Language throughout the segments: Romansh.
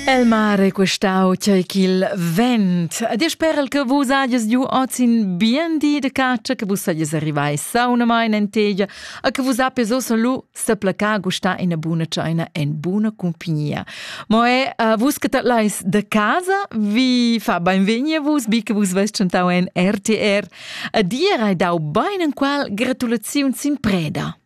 El mare questau tgei ch'il vent. Ed io sperel che vus hagies giu oz in bien di de caccia, che vus sagies arrivai saunamain en tegia, e che vus appes ossa lu seplacar gustar ina buna tscheina en buna compagnia. Mo è, uh, vus che lais de casa, vi fa beinvegni a vus, bi che vus vest chantau en RTR, e dir hai dau bein en qual gratulaziun sin preda.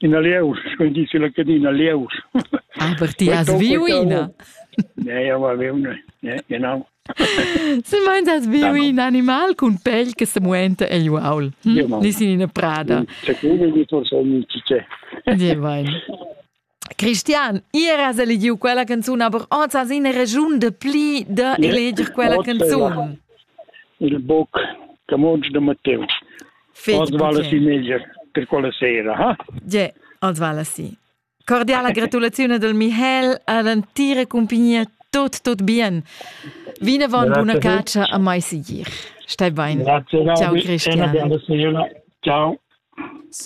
Ina lieus, sco in dici la cadina lieus. Aber ti has viu ina? Nee, aber viu genau. Se meins has viu in animal cun pel che se muenta egl uaul. Hm? Ni sin ina prada. Secure di torso mi cice. Di vain. Christian, ier has elegiu quella canzun, aber oz has ina regiun de pli de eleger quella canzun. Il book Camoggi de Matteo. Os vale si meglio per quella sera, ha? Ja, os vale si. Cordiala gratulazione del Michel ad antire compagnia tot tot bien. Vine von buona caccia a mai sicir. Stai bene. Ciao Christian. Ciao.